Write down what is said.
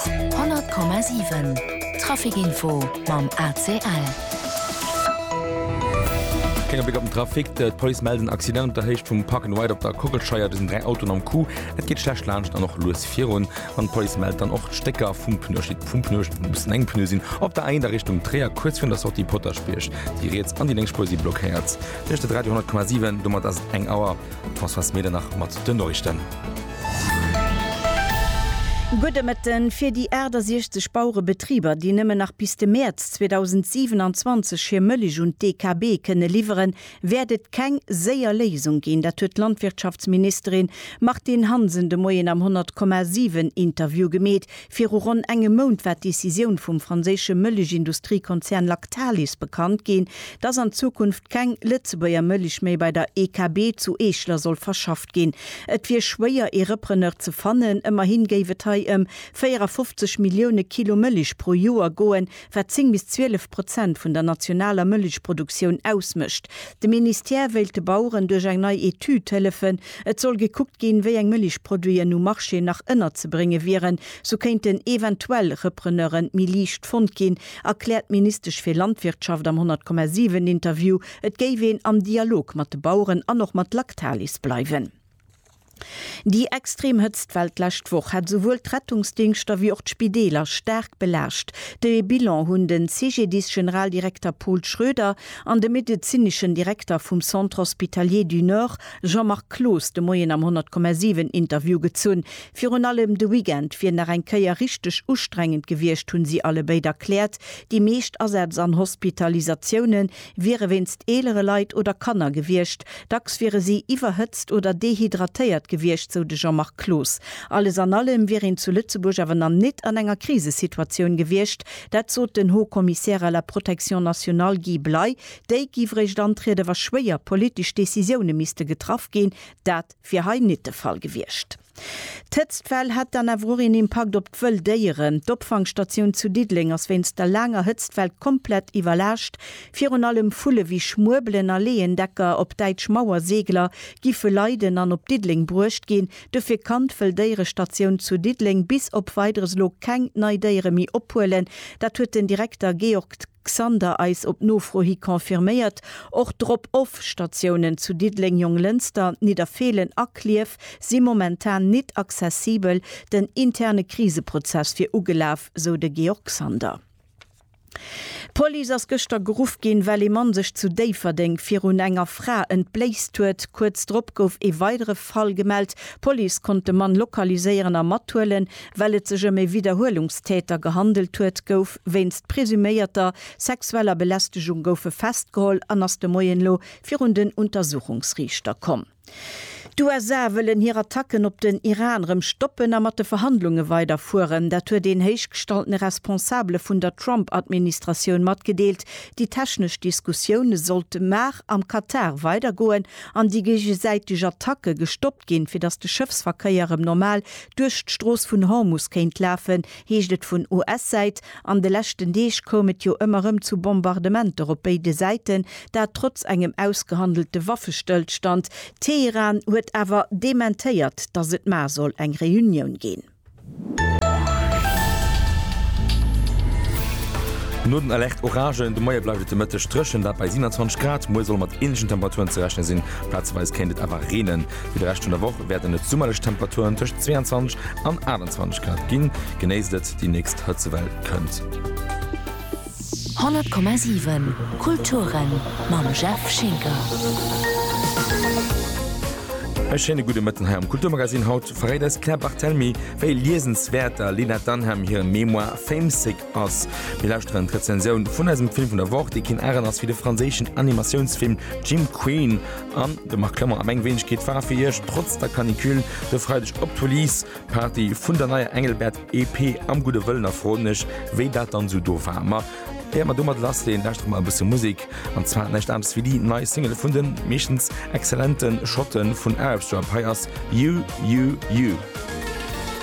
100,7 Trafic Info mam ACL. Klénge Bléck op den Trafic, D'Police mellt en Accident op der Héicht vum Park and Ride op der Kockelscheier. Do sinn 3 Autoen am Coup, et geet schlecht laanscht an och lues virun. An d'Police mellt dann och d'Stécker vum Pneu, et steet vum Pneu, et mussen eng Pneue sinn, op der A1 a Richtung Tréier, kuerz virun der Sortie Potaschbierg. Déi riets an déi lénks Spuer si blockéiert. Dir luuschtert Radio 100,7, domat ass et eng Auer. D'Françoise Medernach mat den Noriichten. Gudde Mëtten. Fir déi 68 Bauerebetriber, déi nëmmen nach bis de Mäerz 2027 hir Mëlich un d'DKB kënne liwweren, wäert et keng séier Léisung ginn. Dat huet d'Landwirtschaftsministerin Martine Hansen de Moien am 100,7 Interview gemeet. Viru ronn engem Mount war d'Decisioun vum franséische Mëlich-Industriekonzern Lactalis bekannt ginn, dass an Zukunft keng Lëtzebuerger Mëlich méi bei der EKB zu Eeschler soll verschafft ginn. gestoppt ginn. Et wier schwéier ee Repreneur ze fannen, ëmmerhin géif et hei ëm 54 Millioune Kilo Mëlich pro Joer goen, wat 10 bis 12 Prozent vun der nationaler Mëlichproduktioun ausmécht. De Ministère wéilt de Baueren duerch eng nei Etüd hëllefen. Et soll gekuckt ginn, wéi eng Mëlichproduiten um Marché nach ënnerzebrénge wieren. Sou kéinten eventuell Repreneure méi liicht fonnt ginn, erkläert d'Ministesch fir Landwirtschaft am 100,7 Interview. Et géif een am Dialog mat de Baueren an och mat Lactalis bleiwen. Déi extrem Hëtztwell d'lescht Woch hätt esouwuel d'Rettungsdingschter wéi och d'Spideeler staark belaascht. De Bilan hunn de CGDIS-Generaldirekter Paul Schroeder an de medezineschen Direkter vum Centre Hospitalier du Nord Jean-Marc Cloos de Moien am 100,7 Interview gezunn. Virun allem de Weekend wier nach eng Kéier richteg ustrengend gewiescht, hu si allebéid erkläert. Déi meescht Asätz an Hospitalisatiounen wiere wéinst eelere Leit oder Kanner gewiescht. Dacks wiere si iwwerhëtzt oder dehydratéiert gewiescht, sou de Jean-Marc Cloos. Alles an allem wier een zu Lëtzebuerg awer nach net an enger Krisesituatioun gewiescht. Dat sot den Haut-Commissaire à la protection nationale Guy Bley. Déi géif eréischt antrieden, wa schwéier politesch Decisioune misste getraff ginn. Dat wier hei net de Fall gewiescht. D'Hëtztwell hätt dann awer och een Impakt op d'wëll Déieren. D'Opfangstatioun zu Diddeleng ass wéinst der laanger Hëtztwell komplett iwwerlaascht. Virun allem Vulle wéi Schmuebelen a Leeëndecker, op Däitsch Mauerseegler, giffe leiden an op Diddeleng bruecht ginn. Dofir kann d'Wëlldéierestatioun zu Diddeleng bis op Weideres elo keng nei Déiere méi ophuelen. Dat huet den Direkter Georg. Xander eis op Nofro hi confirméiert. Och Drop-off-Statiounen zu Diddeleng, Jonglënster, Nidderfeelen a Klierf si momentan nit accessibel. Den interne Kriseprozess wier ugelaf, sou de Georg Xander. D'Police ass gëschter geruff ginn, well ee Mann sech zu Déifferdeng virun enger Fra entbléist huet. Kuerz drop gouf ee weidere Fall gemellt. D'Police konnt de Mann lokaliséieren a mathuelen. Well et sech ëm ee Widderhuelungstäter gehandelt huet, gouf. Schapp wéinst presuméierter sexueller Belästegung goufe festgeholl an ass de Moien elo virun den Untersuchungsriichter komm. D'USA wëllen hir Attacken op den Iran erëm stoppen a mat de Verhandlunge weider fueren. Dat huet een héichgestaltene Responsabele vun der Trump-Administratioun matgedeelt. Déi technesch Diskussioune sollt mar am Katar weider goen an déi géigesäiteg Attacke gestoppt ginn, fir datt de Schëffsverkéier erëm normal duerch d'Strooss vun Hormus kéint lafen, heescht et vun US-Säit. An de leschten Deeg koum et jo ëmmer erëm zu Bombardementer op béide Säiten, dat trotz engem ausgehandelte Waffestëllstand. Teheran huet awer dementéiert, datt et mar soll eng Reunioun ginn. No den Alerte Oragen de Moie bleift et de Mëtteg dréchen, dat bei 27 Grad. Muer soll mat änlechen Temperaturen ze rechne sinn, plazeweis kéint et awer reenen. Fir de Rescht vun der Woch wäerten et summerlech Temperaturen tëscht 22 an 28 Grad ginn. Genéisst et, déi nächst Hëtzewell kënnt. 100,7 Kulturen mam Jeff Schinker. E schéine gudde Mëtten hei am Kulturmagazin. Haut verréit eis d'Claire Barthelemy, wéi liesenswäert der Lena Dunham hire Memoir Famesick ass. Mir lauschteren d'Rezensioun vun eisem Film vun der Woch, dee keen Aren ass wéi de franséischen Animatiounsfilm Jim Queen. An de Marc Klemmer a meng Weenegkeet war fir Iech trotz der Canicule de Freideg op d'Release Party vun der neier Engelbert EP am gudde Wëllen a froen mech wéi dat dann esou do war. Ma éier mer domat lass leeën, lauschtert mer e bësse Musek an zwar näischt anescht wéi déi nei Single vun den meeschtens exzellenten Schotten vun Arabstrap. Hei ass You, You, You.